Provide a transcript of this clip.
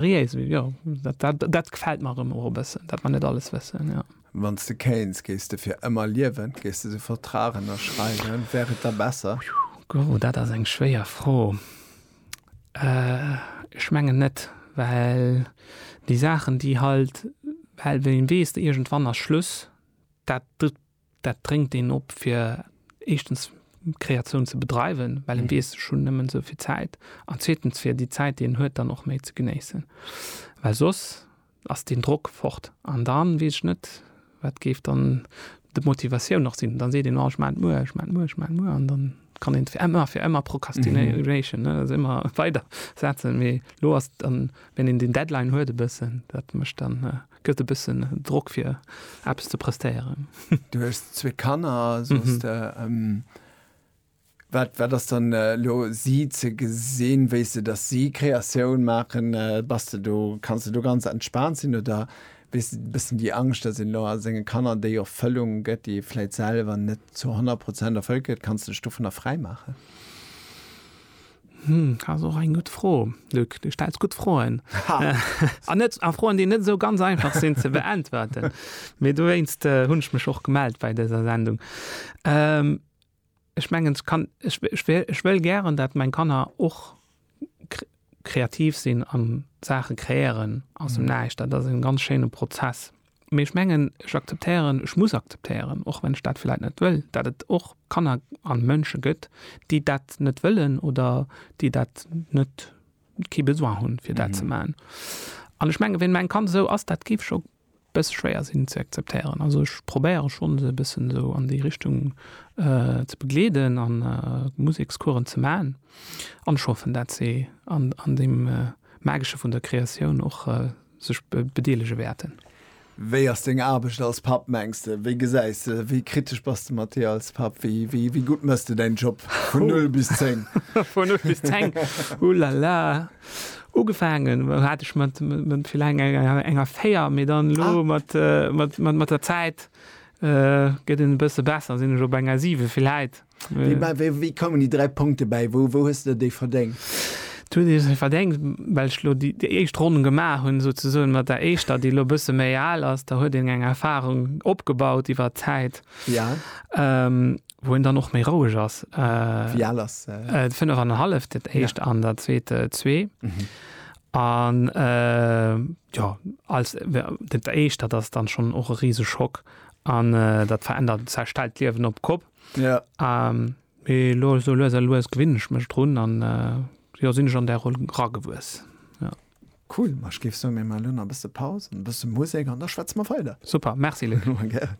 Riéisel, jo, dat gefält mer erëm och e bëssen, dat mer net alles wëssen, jo. Wann s de kéints, géifs de fir ëmmer liewen? Géifs de de Vertrag ënnerschreiwen? Wär et da besser? Gogo, dat ass eng schwéier Fro. Ech mengen net, well déi Saachen, déi halt, well wéi weess, iergendwann ass Schluss, dat Dat dréngt een op fir éischtens Kreatioun ze bedreiwen, well en weess, ech hunn nëmmen esou vill Zäit, an zweetens fir déi Zäit, déi een huet, dann och méi ze genéissen, well soss ass deen Drock fort. An dann weess ech net, wat géif dann d'Motivatioun nach sinn. Dann seet een, oh ech maan et muer, ech maan et muer, ech maan et muer, an dann kann een fir ëmmer, fir ëmmer Procrastination, ne, also ëmmer weider setzen. Mee elo ass dann, wenn een deen Deadline huet e bëssen, dat mécht dann, Gëtt e bëssen Drock fir eppes ze prestéieren. Du hues zwee Kanner, soss de, wat, wat ass dann elo si ze gesinn, wéi s de, datt si Kreatioun maachen? Bass de do, kanns de do ganz entspaant sinn oder hues de e bëssen déi Angscht, datt een elo a senge Kanner déi Erfëllung gëtt, déi ee vläit selwer net zu 100 Prozent erfëllt kritt? Kanns de dech dovunner fräi maachen? Hm, ass och eng gutt Fro, Luc. Du stells gutt Froen. An net, a Froen, déi net esou ganz einfach sinn ze beäntwerten. Mee dowéinst hunn ech mech och gemellt bei dëser Sendung. Ähm, ech mengen, ech kann, ech, ech wél, ech wëll gären, dat meng Kanner och kre, kreativ sinn an Saache kreéieren aus dem Näischt. Dat ass en ganz schéine Prozess. Mee ech mengen, ech akzeptéieren, ech muss akzeptéieren, och wann ech dat vläit net wëll, datt et och Kanner a Mënsche gëtt, déi dat net wëllen oder déi dat net, kee Besoin hunn, fir dat ze maachen. An ech mengen, ween mäin Kand esou ass, dat géif ech och e bësse schwéier sinn ze akzeptéieren. Also ech probéiere schonn, se e bëssen esou an déi Richtung ze begleeden a Musekscoursen ze maachen. An ech hoffen, datt si an deem Magesche vun der Kreatioun och sech bedeelege wäerten. Wéi ass deng Aarbecht als Papp, mengs de? Wéi gesäis de, wéi kritesch bass de mat dir als Papp? Wéi gutt mëss de däin Job vun null bis zéng? Vun null bis zéng? Ouh là là! Ugefaangen hat ech mat villäng enger véier, mee dann elo mat der Zäit gëtt en e bësse besser, sinn ech op enger siwe villäit. Wéi koumen déi 3 Punkte bäi? Wou hues de déi verdéngt? Wou hues de se verdéngt? Well ech elo déi éischt Ronn gemaach hunn, souzesoen, mat der éischter, déi elo e bësse méi al ass, da huet een eng Erfarung opgebaut iwwer d'Zäit, wou een dann och méi roueg ass. Wéi al ass se? Fënnef an e halleft, dat éischt an dat zweet zwee. An jo, als dat éischt, dat ass dann schonn och e Riseschock an dat verännert, zerstellt d'Liewen op d'Kopp. Ja. Ähm, mee lo so lues a lues gewinn ech mech drun an äh, jo sinn ech an der Roll ragewuess. Ja. Cool, ma ech géif soen, mir maachen elo nach e bësse Paus, e bësse Musek an da schwätze mer weider. Super, merci Luc. Gären.